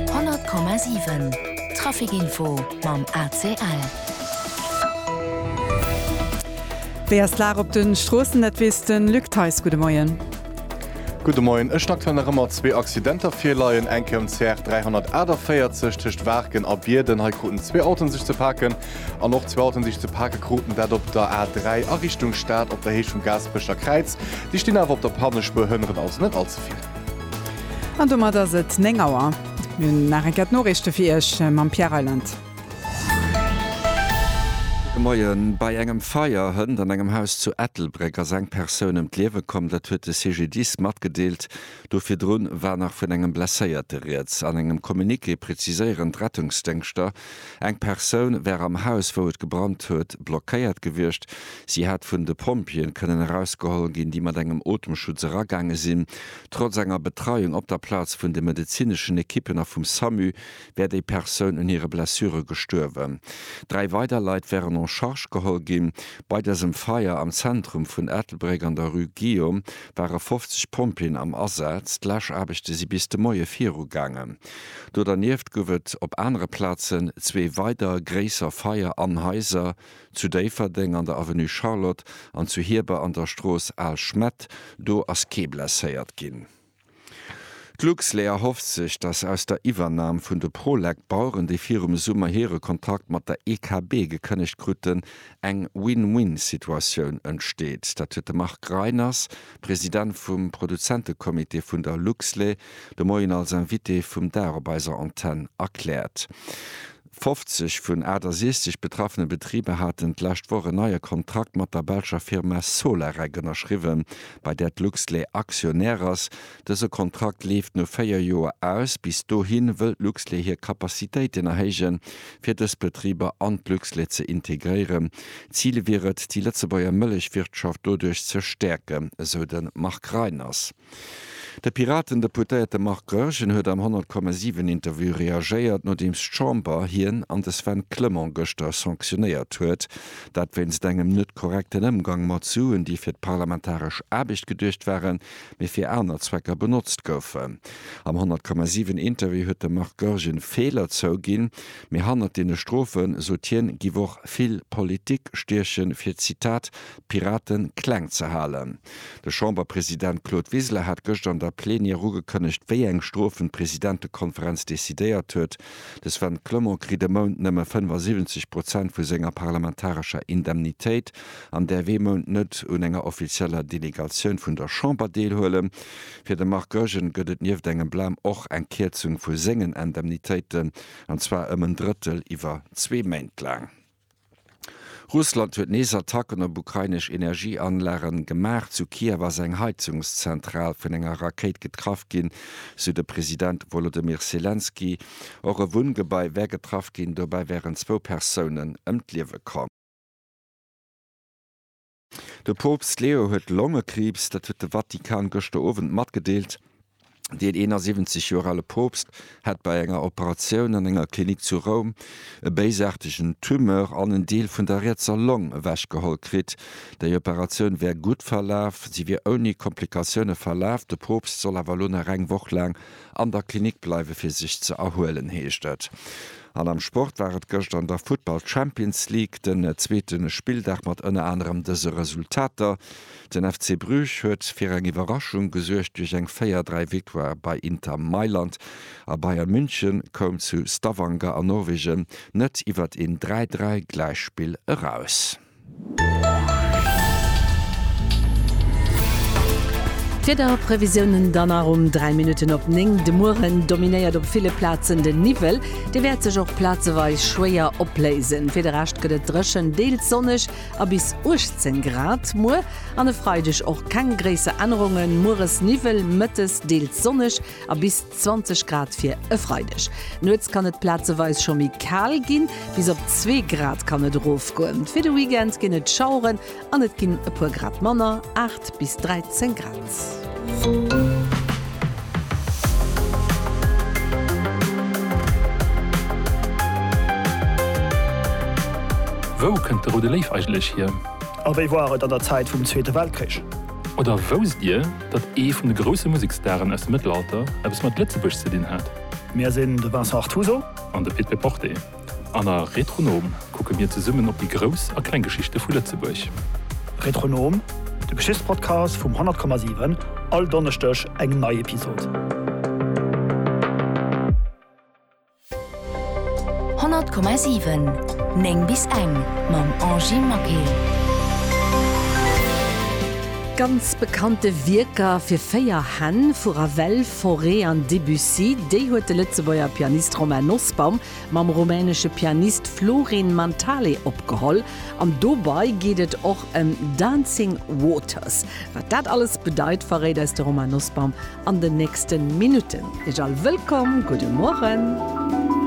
100,7 Trafic Info mam ACL. Wéi ass d'Lag op de Stroossen, dat weess de Luc Theis. Gudde Moien. Gudde Moien. Et sinn aktuell nach ëmmer zwee Accidenter virleien. Eng Kéier um CR 348 tëscht Waarken a Bierden. Hei kruten zwee Autoen sech ze paken. An och zwee Autoen sech ze pake kruten. Dat op der A 3 a Richtung Stad op der Héicht vum Gaasperecher Kräiz. Déi stinn awer op der Pannespuer hënneren, also net all ze vill. An domat ass et 9 Auer. Mir hunn nach eng Kéier d'Noriichte fir Iech mam Pierre Reyland. Gudde Moien. Bei engem Feier hënt an engem Haus zu Ettelbréck ass eng Persoun ëm d'Liewe komm. Dat huet de CGDIS matgedeelt. Do virdrun war nach vun engem Blesséierte rieds. An engem Communiqué preziséieren d'Rettungsdéngschter, Eng Persoun wär am Haus, wou et gebrannt huet, blockéiert gewiescht. Si hätt vun de Pompjeeën kënnen erausgeholl ginn, déi mat engem Otemschutz eragaange sinn. Trotz enger Betreiung op der Plaz vun de medezineschen Ekippen a vum Samu wär déi Persoun un hire Blessure gestuerwen. Dräi weider Leit wären en charge geholl ginn. Bei dësem Feier am Zentrum vun Ettelbréck an der Rue Guillaume ware 50 Pompjeeën am Asaz. D'Läschaarbechte si bis de Moie virugaangen. Do dernieft gouf et op anere Plazen zwee weider gréisser Feier an Haiser, zu Déifferdeng an der Avenue Charlotte an zu Hieber an der Strooss Al Schmett. Do ass kee blesséiert ginn. D'Luxlait erhofft sech, datt aus der Iwwernam vun de Prolec Baueren, déi virum Summer hire Kontrakt mat der EKB gekënnegt kruten, eng Win-Win-Situatioun entsteet. Dat huet de Marc Reiners, President vum Produzentecomité vun der Luxlait, De Moien als Invité vum Dag op eiser Antenn erkläert. 50 vun 68 betraffene Betriber haten d'lescht Woch en neie Kontrakt mat der belscher Firma Solarec ënnerschriwwen, bei där d'Luxlait Aktionär ass. Dëse Kontrakt leeft no véier Joer aus. Bis dohi wëll d'Luxlait hir Capacitéiten erhéijen, fir dës Betriber an d'Luxlait ze integréieren. Zil wier et, déi Lëtzebuerger Mëllechwirtschaft doduerch ze stäerken, esou de Marc Reiners. De Piraten-Deputéierte Marc Goergen huet am 100,7 Interview reagéiert, nodeems d'Chamber hien an de Sven Clement gëschter sanctionéiert huet. Dat wéinst engem net korrekten Ëmgang mat Suen, déi fir d'parlamentaresch Aarbecht geduecht waren, mee fir aner Zwecker benotzt goufen. Am 100,7 Interview huet de Marc Goergen Feeler zouginn, mee hannert deene Strofen, sot hien, giff och vill Politik stiechen, fir, Zitat, d'Piraten kleng ze halen. De Chamberpresident Claude Wiseler hat gëscht an der Plenière ugekënnegt, wéi eng Strofen d'Presidentekonferenz decidéiert huet. De Sven Clement kritt e Mount nëmme 75 Prozent vu senger parlamentarescher Indemnitéit an däerf ee Mount net un enger offizieller Delegatioun vun der Chamber deelhuelen. Fir de Marc Goergen gëtt et nieft engem Blam och eng Kierzung vu sengen Indemnitéiten, an zwar ëm en Drëttel iwwer zwee Méint laang. Russland huet nees Attacken op ukrainesch Energieanlage gemaach. Zu Kiew ass eng Heizungszentral vun enger Rakéit getraff ginn, sou de President Wolodymyr Selenskyj. Och e Wunngebai wär getraff ginn, dobäi wären zwou Persounen ëm d'Liewe komm. De Poopst Leo huet Longekriibs, dat huet de Vatikan gëschter Owend matgedeelt. Deen 71 Joer ale Poopst hätt bei enger Operatioun an enger Klinik zu Roum e béisaartegen Tumeur an en Deel vun der rietser Long ewechgeholl kritt. Déi Operatioun wär gutt verlaf, si wier ouni Komplikatioune verlaf. De Poopst soll awer elo nach eng Woch laang An der Klinik bleiwe fir sech ze erhuelen, heescht et. An am Sport war et gëscht an der Futtball Champions League den zweete Spilldag mat ënner anerem dëse Resultater, Den FC Bruges huet fir eng Iwwerraschung gesuergt duerch eng 4, 3 Victoire bei Inter Mailand a Bayern München koum zu Stavanger an Norwegen net iwwert een 3, 3 Gläichspill eraus. D'Wiederprevisiounen dann nach um 3 Minutten op 9. De Mueren dominéiert op ville Plazen de Niwwel, dee wäert sech och plazeweis schwéier opléisen. Fir de Rescht gëtt et dréchen, deels sonneg a bis 18 Grad. Muer an e Freideg och keng gréisser Ännerungen, mueres Niwwel, mëttes deels sonneg a bis. 20 Grad fir e Freideg. Nuets kann et plazeweis scho méi kal ginn, bis op zwee Grad kann et erofgoen. Fir de Weekend ginn et Schaueren an et ginn e puer Grad manner, 8 bis 13 Grad. Wou kënnt de Roude Léif eigentlech hier? A wéi war et an der Zäit vum Zweete Weltkrich? Oder wousst Dir, datt ee vun de grousse Museksstaren aus dem Mëttelalter eppes mat Lëtzebuerg ze dinn hat. Mir sinn de Vincent Artuso. An de Pit Peporte. An a Retronom kucke mir zesummen op déi grouss a kleng Geschichte vu Lëtzebuerg. Retronom, de Geschichtspodcast vum 100,7, all Donneschdeg eng nei Episod. 100,7 9 bis eng mam Angie Maquet. Ganz bekannte Wierker fir véier Hänn vu Ravel, Fauré an Debussy, déi huet de Lëtzebuerger Pianist Romain Nosbaum mam rumänesche Pianist Florin Mantale opgeholl. An dobei geet et och ëm Dancing Waters. Wat dat alles bedeit, verréit eis de Romain Nosbaum an den nächsten Minuten. Iech all wëllkomm, gudde Morgen.